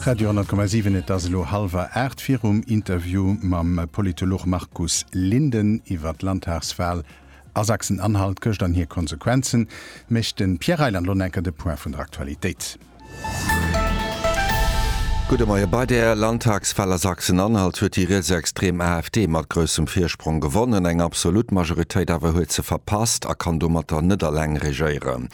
Radio 10,7 Et ass elo hallwer 8 virum Interview mam Politolog Markus Linden iwwer d'Landtagswal a Sachsen-Anhalt gëscht an hir Konsequenzen, mécht de Pierre Reyland lo enker de Point vun der Aktualitéit. Gudde Moie. Bei der Landtagswal a Sachsen-Anhalt huet déi rietsextrem AfD mat groussem Virsprong gewonnen, eng absolut Majoritéit awer huet se verpasst a kann domatter net alleng regéieren.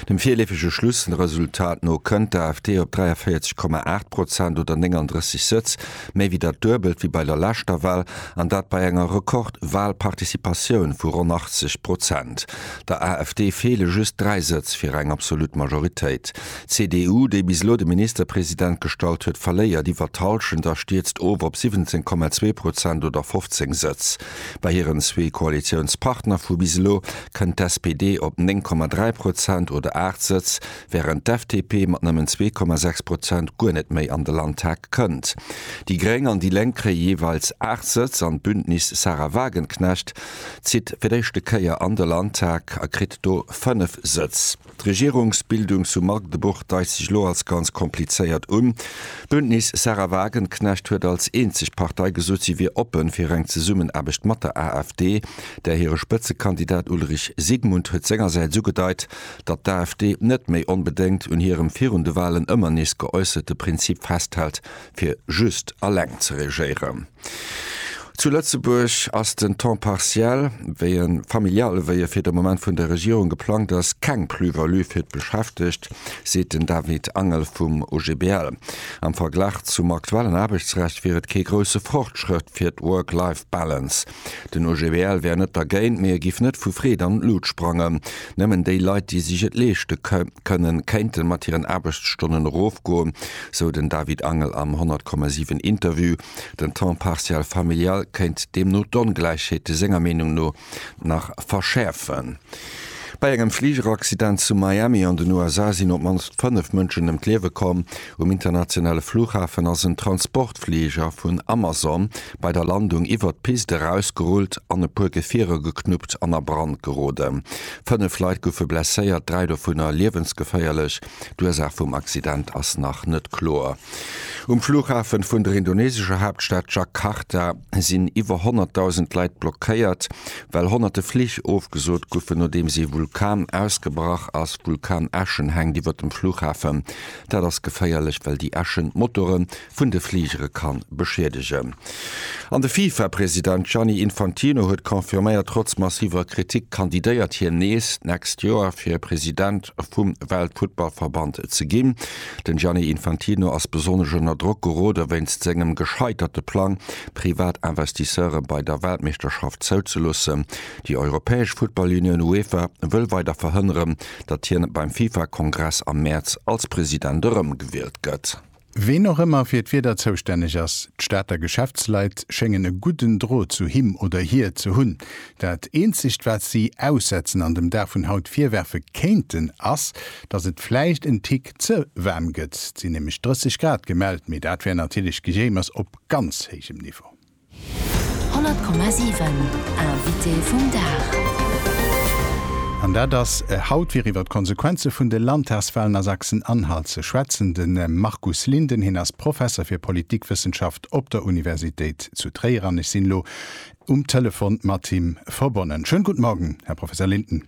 Dem virleefege Schlussresultat no kënnt d'AfD op 43,8 Prozent oder 39 Sëtz, méi wéi dat Duebelt wéi bei der leschter Wahl, an dat bei enger Rekord-Wahlparticipatioun vu ronn 80 Prozent. Der AfD feele just dräi Sëtz fir eng absolut Majoritéit. D'CDU, déi bis elo de Ministerpresident gestallt huet, verléiert iwwer d'Hallschent a stierzt of op 17,2 Prozent oder 15 Sëtz. Bei hiren zwee Koalitiounspartner vu bis elo kënnt d'SPD op 9,3 Prozent oder 8 Sëtz, wärend d'FDP mat nëmmen 2,6 Prozent guer net méi an de Landtag kënnt. Déi gréng an déi lénk kréie jeeweils 8 Sëtz an d'Bündnis Sahra Wagenknecht zitt fir d'éischte Kéier an de Landtag a kritt do 5 Sëtz. D'Regierungsbildung zu Magdebourg deischt sech elo als ganz komplizéiert un. D'Bündnis Sahra Wagenknecht huet als eenzeg Partei gesot, si wier oppe fir eng Zesummenaarbecht mat der AfD. Där hire Spëtzekandidat Ulrich Sigmund huet sengersäits ugedeit, datt d'AfD net méi onbedéngt un hirem virun de Walen ëmmer nees geäusserte Prinzip festhält, fir just eleng ze regéieren. Zu Lëtzebuerg ass den Temps partiel, wéi e familiale wéi e fir de Moment vun der Regierung geplangt ass, keng Plus-value fir d'Beschäftegt, seet den David Angel vum OGBL. Am Verglach zum aktuellen Aarbechtsrecht wier et kee grousse Fortschrëtt fir d'Work-Life Balance. Den OGBL wär net dergéint, mee e giff net vu Freed an d'Lut sprangen. Nëmmen déi Leit, déi sech et leeschte. kënnen, kéinte mat hiren Aarbechtsstonnen erofgoen, sou den David Angel am 100,7 Interview. Den Temps partiel familial kéint deemno d'Ongläichheete senger Meenung no nach verschäerfen. Bei engem Fligeraccident zu Miami an den USA sinn op d'mannst fënnef Mënschen ëm d'Liewe komm. Um internationale Flughafen ass en Transportfliger vun Amazon bei der Landung iwwert d'Pist erausgerullt an e puer Gefierer geknuppt an a Brand geroden. Fënnef Leit goufe blesséiert, dräi dovunner liewensgeféierlech. D'Ursaach vum Accident ass nach net kloer. Um Flughafe vun der indonesescher Haaptstad Jakarta sinn iwwer 100.000 Leit blockéiert, well honnerte Flich ofgesot goufen, nodeems ee Vulkan ausgebrach ass. Vulkanäschen hänkt iwwert dem Flughafen. Dat ass geféierlech, well déi Äschen d'Motore vun de Fligere ka beschiedegen. An de FIFA-President Gianni Infantino huet confirméiert, trotz massiver Kritik kandidéiert hien nees d'nächst Joer fir President vum Weltfuttballverband ze ginn. Den Gianni Infantino ass besonnesch ënner Drock gerode wéinst sengem gescheiterte Plang, privat Investisseure bei der Weltmeeschterschaft zouzeloossen. Déi europäesch Futtballunioun UEFA wëll weider verhënneren, datt hien beim FIFA-Kongress am Mäerz als President erëmgewielt gëtt. Ween och ëmmer fir d'Wieder zoustänneg ass, d'Stater Geschäftsleit schéngen e gudden Drot zu him oder hir ze hunn. Dat eenzegt wat si aussetzen an dem Dag vun haut virwerfe kéinten ass, datt et vläicht en Tick ze waarm gëtt. Et sinn nämlech 30 Grad gemellt, mee dat wär natierlech Gejéimers op ganz héijem Niveau. 100,7 Invité vum Dag. An dat ass haut, fir iwwer d'Konsequenze vun de Landtagswalen a Sachsen-Anhalt ze schwätzen, de Markus Linden. Hien ass Professer fir Politikwëssenschaft op der Universitéit zu Tréier an ech sinn elo um Telefon mat him verbonnen. Schönen guten Morgen, Här Professor Linden.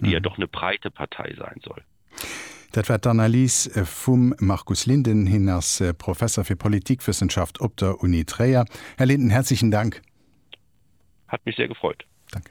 déi jo doch ne breite Partei sein soll. Dat war d'Analys vum Markus Linden. Hien ass Professer fir Politikwëssenschaft op der Uni Tréier. Här Linden, herzlichen Dank. Hat mech sehr gefreut. Danke.